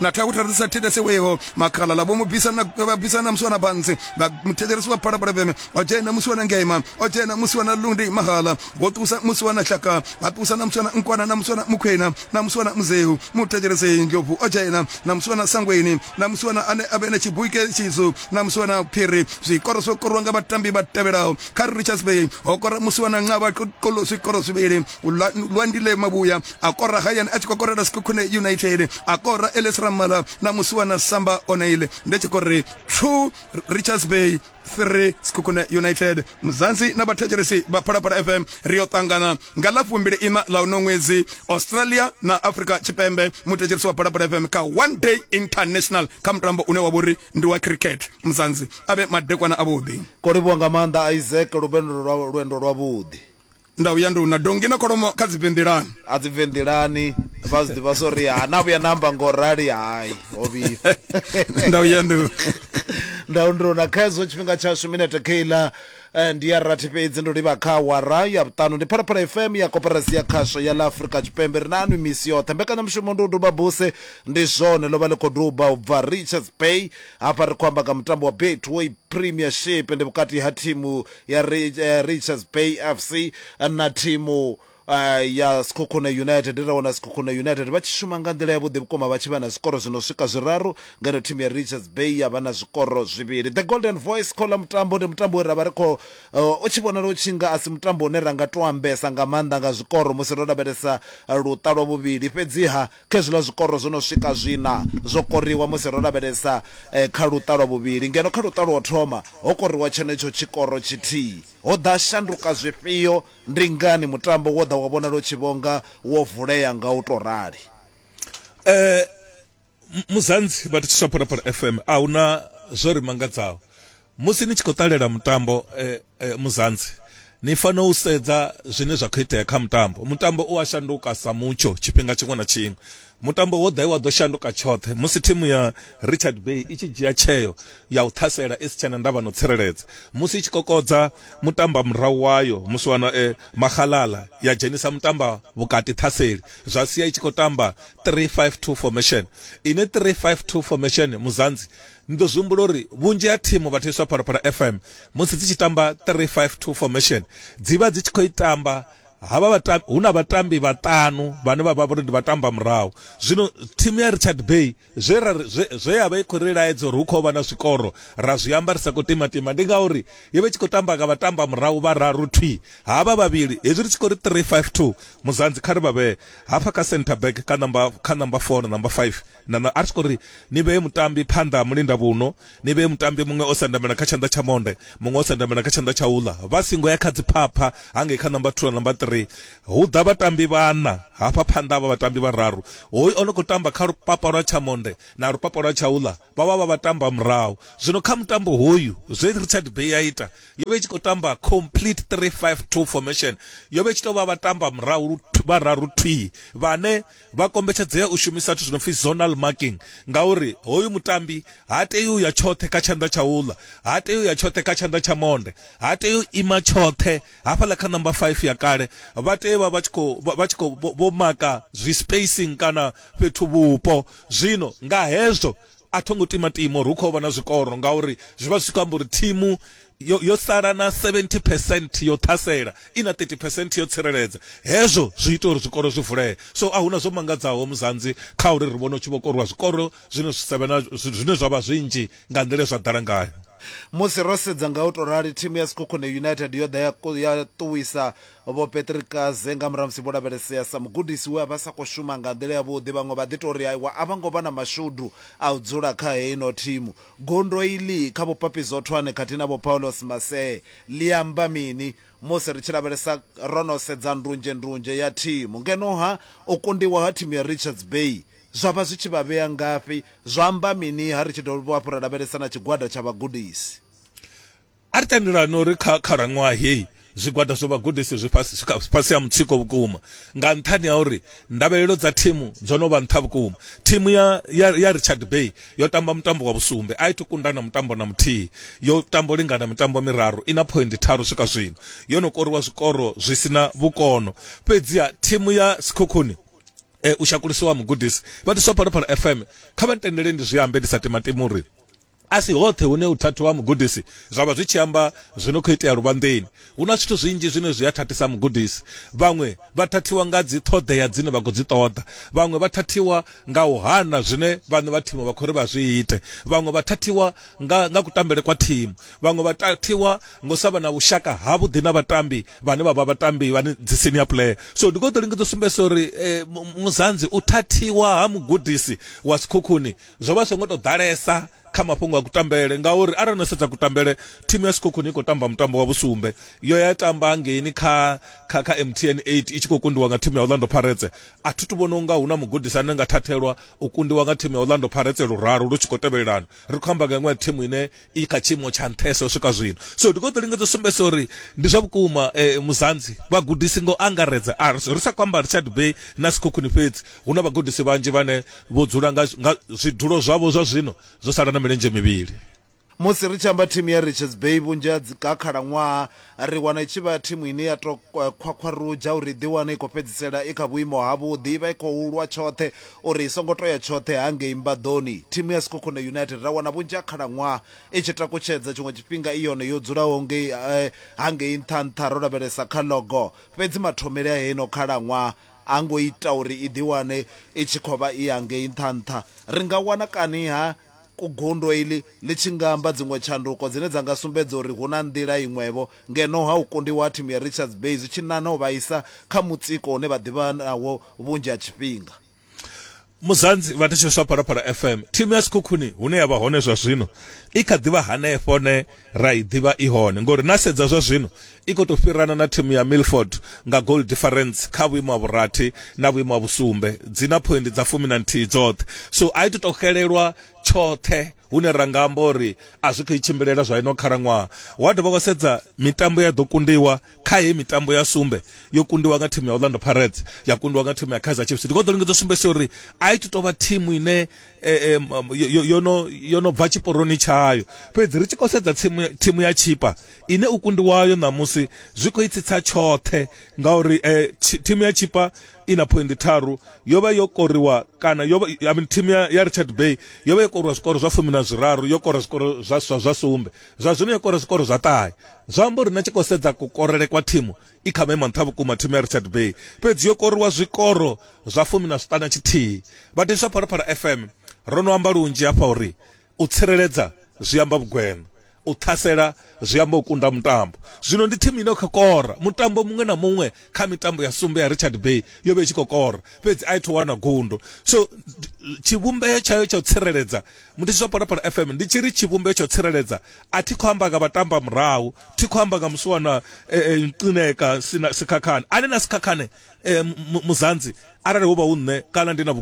na ṱhaha u ṱalusa thedese weho makhalala vho mu bvisa na vha bvisa na musi wana bantsi vha muthetshelesi wa phalaphala vheme o dzhena musi wana ngeima o dzhena musi wana lundi mahala vho tusa musi wana hlaka vha tusa na musi wana nkwana na musi wana mukhwena na musi wana muzehu muthetshelesi ndlovu o dzhena na musi wana sangweni na musi wana ane a vhe na tshibuike tshizu na musi wana phiri zwikoro zwo korwa nga vhatambi vha tevhelaho kha richards bay ho kora musi wana nqaba kolo zwikoro zwivhili lwa ndile mavhuya a kora hayani a tshi khou korela sikhukhune united a kora eles ramala na musuwa na samba onaile ndi tshi khou ri two richards bay 3 sikhukhune united muzansi na vhathetshelesi vha phalaphala fm ri yo ṱangana nga ḽa fumbili ina ḽa uno ṅwedzi australia na africa tshipembe muthetshelesi wa phalaphala fm kha one day international kha mutambo une wa vhori ndi wa cricket muzansi a vhe madekwana avhuḓi ko livhuwa nga maanḓa isaac lubendo lwendo lwavhuḓi nda vhuya ndi una dongi na kholomo kha dzivhenḓelani a dzivhenḓelani vha zwi ḓivha sori ha na vhuya na amba ngo rali hai ho vhifha nda vhuya ndi ndau ndi una khaidzo tshifhinga tshashu minete keiḽa eh, ndi ya rathi fhedzi ndo livha kha awara ya vhuṱanu ndi phalaphala fm ya koperasi ya khasho ya ḽa afurika tshipembe ri na anwi misi yoṱhe mbekanyamushumo ndi u duba buse ndi zwone ḽo vha ḽi khou duba u bva richards bay hafha ri khou amba nga mutambo wa betway premiership ndi vhukati ha thimu ya Richards Bay FC na thimu eh, ya Sekhukhune United ri wana Sekhukhune United vha tshi shuma nga nḓila yavhuḓi vhukuma vha tshi vha na zwikoro zwi no swika zwiraru ngeno thimu ya Richards Bay ya vha na zwikoro zwivhili The Golden Voice kho ḽa mutambo ndi mutambo we ra vha ri khou eh, u tshi vhonala u tshi nga a si mutambo une ra nga tou ambesa nga maanḓa nga zwikoro musi ro lavhelesa eh, luṱa lwa vhuvhili fhedziha Khezwiḽa zwikoro zwo no swika zwiṋa zwo koriwa musi ro lavhelesa kha luṱa lwa vhuvhili, ngeno kha luṱa lwa u thoma ho koriwa tshenetsho tshikoro tshithihi. Ho ḓa shanduka zwifhio? Ndi ngani mutambo wo ḓa wa vhonala u tshi vho nga wo vulea nga u tou rali? Muzansi vha thetshelesa Phalaphala FM, a hu na zwo ri mangadzaho. Musi ni tshi khou ṱalela mutambo e, e, muzanzi ni fanela u sedza zwine zwa khou itea kha mutambo mutambo u a shanduka sa mutsho tshifhinga tshiṅwe na tshiṅwe mutambo wo ḓa wa ḓo shanduka tshoṱhe musi thimu ya richard bay i tshi dzhia tsheo ya u ṱhasela i si tshena ndavha no tsireledza musi i tshi kokodza mutamba murahu wayo musi wana e, mahalala ya dzhenisa mutamba vhukati ṱhaseli zwa sia i tshi khou tamba 352 formation ine 352 formation muzanzi Ni ḓo zwi humbula uri vhunzhi ha thimu vha thetshelwa Phalaphala FM musi dzi tshi tamba 352 formation dzi vha dzi tshi khou i tamba havha vhatambi hu na vhatambi vhaṱanu vhane vha vha vhori ndi vhatamba murahu zwino thimu ya Richard Bay zwe ra zwe ya vha i khou ri laedza uri hu khou vha na zwikoro ra zwi amba ri sa khou timatima ndi ngauri yo vha i tshi khou tamba nga vhatamba murahu vha raru thwi havha vhavhili hezwi ri tshi khou ri 352 muzanzi kha ri vha vhee hafha kha centre back kha namba kha namba 4 na namba 5 Na, na, a ri tshi khou ri, Ni vhee mutambi phanḓa ha mulindavhuno, ni vhee mutambi muṅwe o sendamela kha tshanḓa tsha monde, muṅwe o sendamela kha tshanḓa tsha uḽa. Vha singo ya kha dziphapha hangei kha number two na number three. Hu ḓa vhatambi vhaṋa, hafha phanḓa ha vha vhatambi vhararu. Hoyu o no khou tamba kha lupapa lwa tsha monde na lupapa lwa tsha uḽa vha vha vha vhatambi vha murahu. Zwino kha mutambo hoyu, zwe Richard Bay ya ita, yo vha i tshi khou tamba complete three five two formation. Yo vha i tshi tou vha vhatambi vha murahu vhararu thwii vhane vha kombetshedzea u shumisa zwithu zwi no pfi zonal marking ngauri hoyu mutambi ha tei u ya tshoṱhe kha tshanḓa tsha uḽa ha tei u ya tshoṱhe kha tshanḓa tsha monde ha tei u ima tshoṱhe hafhaḽa kha namba 5 ya kale vha tea vha vha tshi khou vha tshi khou vho maka zwi spacing kana fhethu vhupo zwino nga hezwo A tho ngo timatima uri hu khou vha na zwikoro ngauri zwi vha zwi tshi khou amba uri thimu yo, yo sala na 70 percent yo ṱhasela, i na 30 percent yo tsireledza. Hezwo zwi ita uri zwikoro zwi vulee. So a hu na zwo mangadzaho Muzanzi kha uri ri vhone hu tshi vho koriwa zwikoro zwine zwi sa vhe na, zwine zwa vha zwinzhi nga nḓila ye zwa ḓala ngayo. Musi ro sedza nga u tou rali, thimu ya Sekhukhune United yo ḓa ya, ya ṱuwisa Vho Patrick Kaze, Nga murahu ha musi vho lavhelesea sa mugudisi we a vha a sa khou shuma nga nḓila yavhuḓi, vhaṅwe vha ḓi tou ri aiwa a vha ngo vha na mashudu a u dzula kha heino thimu. Gondo iḽi kha Vho Papi Zwothwane khathihi na Vho Paulos Masee ḽi amba mini? Musi ri tshi lavhelesa, ro no sedza ndunzhendunzhe ya thimu. Ngeno-ha, u kundiwa ha thimu ya Richards Bay zwa vha zwi tshi vha vhea ngafhi? Zwa amba mini-ha ri tshi dovha hafhu ra lavhelesa na tshigwada tsha vhagudisi? A ri tendelani uri kha khalaṅwaha heyi zwigwada zwa vhagudisi zwi fhasi ha mutsiko vhukuma nga nṱhani ha uri ndavhelelo dza thimu dzo no vha nṱha vhukuma. Thimu ya, ya, ya Richard Bay yo tamba mutambo wa vhusumbe, a i thu kunda na mutambo na muthihi. Yo tamba u lingana mitambo miraru, i na phoindi tharu swika zwino. Yo no koriwa zwikoro zwi si na vhukono. Fhedziha thimu ya Sekhukhuni eh, u shakulisiwa mugudisi vha ḓiswa Phalaphala FM, kha vha ntendele ndi zwi ambe ndi sa timatimi uri A si hoṱhe hune u thathiwa ha mugudisi zwa vha zwi tshi amba zwi no khou itea luvhanḓeni. Hu na zwithu zwinzhi zwine zwi a thathisa mugudisi. Vhaṅwe vha thathiwa nga dziṱhoḓea dzine vha khou dzi ṱoḓa. Vhaṅwe vha thathiwa nga u hana zwine vhaṋe vha thimu vha khou ri vha zwi ite. Vhaṅwe vha thathiwa nga nga kutambele kwa thimu. Vhaṅwe vha thathiwa nga u sa vha na vhushaka havhuḓi na vhatambi vhane vha vha vhatambi vhane dzi senior player. So ndi khou ḓo lingedza u sumbedzisa uri Muzanzi u thathiwa ha mugudisi wa Sekhukhuni zwo vha songo to ḓalesa kha mafhungo a kutambele ngauri arali no sedza kutambele thimu ya sikhokhoni i khou tamba mutambo wa vhusumbe yo ya tamba ngeini kha kha kha mtn 8 i tshi khou kundiwa nga thimu ya orlando pirates a thi tu vhona unga hu na mugudisi ane nga thathelwa u kundiwa nga thimu ya orlando pirates luraru lu tshi khou tevhelelana ri khou amba nga iṅwe ya thimu ine i kha tshiimo tsha nṱhesa u swika zwino so ndi khou ḓo lingedza u sumbedzisa uri ndi zwa vhukuma eh, muzanzi vhagudisi ngo angaredza a ri ri sa khou amba richard bay na sikhukhuni fhedzi hu na vhagudisi vhanzhi vhane vho dzula nga nga zwidulo zwavho zwa zwino zwo sala na milenzhe mivhili musi ri tshi amba thimu ya richards bay vhunzhi ha dzi ka khalaṅwaha ri wana i tshi vha thimu ine ya to khwakhwarudzha uri ḓi wane i khou fhedzisela i kha vhuimo ha vhuḓi i vha i khou lwa tshoṱhe uri i songo toya tshoṱhe hangei mbaḓoni thimu ya sikhokhone united ra wana vhunzhi ha khalaṅwaha i tshi takutshedza tshiṅwe tshifhinga i yone yo dzulaho ngei eh, hangei nṱha nṱha ro lavhelesa kha logo fhedzi mathomele a heino khalaṅwaha a ngo ita uri i ḓi wane i tshi khou vha i hangei nṱha nṱha ri nga wana kani ha Gundo iḽi ḽi tshi nga amba dziṅwe tshanduko dzine dza nga sumbedza uri hu na nḓila iṅwevho ngeno ha u kundiwa ha thimu ya Richards Bay zwi tshi nana u vha isa kha mutsiko une vha ḓivha nawo vhunzhi ha tshifhinga. Muzanzi, Vhathetsheleswa Phalaphala FM, thimu ya Sekhukhuni hune ya vha hone zwazwino i kha ḓi vha hanefho hune ra i ḓivha i hone ngori na sedza zwa zwino i khou tou fhirana na thimu ya milford nga goal difference kha vhuimo ha vhurathi na vhuimo ha vhusumbe dzi na phoindi dza fumi na nthihi dzoṱhe so a i to tou xelelwa tshoṱhe hune ra nga amba uri a zwi khou i tshimbilela zwa ino khalaṅwaha wa dovha wa sedza mitambo ya ḓo kundiwa kha heyi mitambo ya sumbe yo kundiwa nga thimu ya orlando pirates ya kundiwa nga thimu ya kaizer chiefs ndi khou ḓo lingedza u sumbedzisa uri a i to tou vha thimu ine eh, em, em, yo- yo- yo no- yo no bva tshiporoni tshayo fhedzi ri tshi khou sedza tsimu- thimu ya tshipa ine u kundiwayo ṋamusi zwi khou itsitsa tshoṱhe ngauri eh, tshi- thimu ya tshipa i na phoindi tharu yo vha yo koriwa kana yo vha- I mean, thimu ya ya richard bay yo vha yo koriwa zwikoro zwa fumi na zwiraru yo kora zwikoro zwa zwa- zwa sumbe zwa zwino yo kora zwikoro zwa ṱahe zwa amba uri na tshi khou sedza kukorele kwa thimu i kha maimo nṱha vhukuma thimu ya richard bay fhedzi yo koriwa zwikoro zwa fumi na zwiṱana tshithihi vhadiswa phalaphala fm ro no amba lunzhi hafha uri u tsireledza zwi amba vhugwena u ṱhasela zwi amba u kunda mutambo zwino ndi thimu ine kha kora mutambo muṅwe na muṅwe kha mitambo ya sumbe ya richard bay yo vha i tshi khou kora fhedzi a i tho wana gundo so tshivhumbeo tshayo tsha u tsireledza Muthisi zwa Phalaphala FM ndi tshi ri tshivhumbeo tsho tsireledza a thi khou amba nga vhatamba murahu thi khou amba nga musiwana eh, eh, nqineka sina sikhakhane ane na sikhakhane eh, muzanzi arali hu vha hu nṋe kana ndi na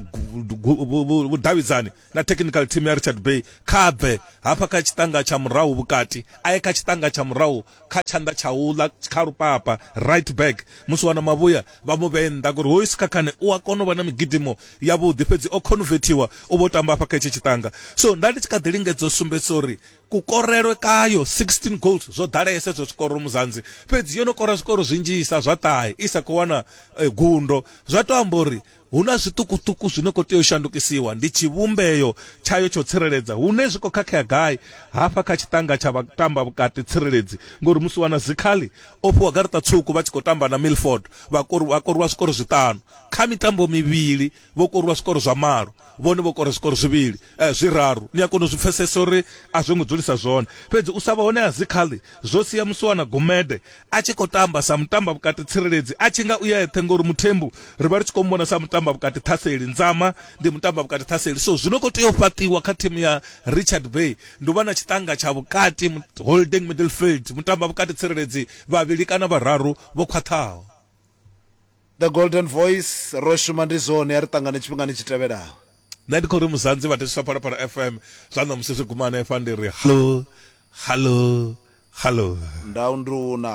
vhudavhidzani na technical team ya richard bay kha bve hafha kha tshiṱanga tsha murahu vhukati a ye kha tshiṱanga tsha murahu kha tshanḓa tsha u ḽa kha lupapa right back musi wana mavhuya vha mu vhee nnḓa ngori hoyu sikhakhane u a kona u vha na migidimo yavhuḓi fhedzi o convertiwa u vho tamba afha kha hetshi tshiṱanga so nda ndi tshi kha ḓi lingedza u sumbedzisa uri kukorelwe kayo 16 goals zwo ḓalesa ezwo zwikoro muzanzi fhedzi yo no kora zwikoro zwinzhisa zwa ṱahe i sa khou wana eh, gundo zwa to amba uri Hu na zwiṱukuṱuku zwi no khou tea u shandukisiwa, ndi tshivhumbeo tshayo tsha u tsireledza hune zwi khou khakhea gai hafha kha tshiṱanga tsha vhatambavhukati tsireledzi ngori musi wana Zikhali o fhiwa garaṱa tswuku vha tshi khou tamba na Milford vha vha korwa zwikoro zwiṱanu kha mitambo mivhili vho korwa zwikoro zwa malo vhone vho kora zwikoro zwivhili eh, zwiraru ni a kona u zwi pfesesa uri a zwo ngo dzulisa zwone fhedzi u sa vha hone ha Zikhali zwo sia musi wana Gumede a tshi khou tamba sa mutamba vhukati tsireledzi a tshi nga u ya eṱhe ngori muthembu ri vha ri tshi khou muvhona sa mutamba vhukati ṱhaseli nzama ndi mutamba vhukati ṱhaseli so zwi no khou tea u fhaṱiwa kha thimu ya richard bay ndi u vha na tshiṱanga tsha vhukati holding middlefield mutamba vhukati tsireledzi vhavhili kana vhararu vho khwaṱhaho The Golden Voice, ro shuma ndi zwone, a ri ṱangane tshifhingani tshi tevhelaho. Nṋe ndi khou ri Muzanzi vhathetshiswa Phalaphala FM zwa ṋamusi zwi guma hanefha ndi ri hallo hallo hallo. Ndau nduna.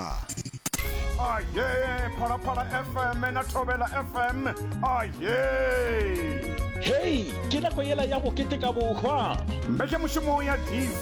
Ayee Phalaphala FM na Thovhela FM ayee. Hei, ke nako yela ya go keteka bohwa. Mbekyamushumo ya TV.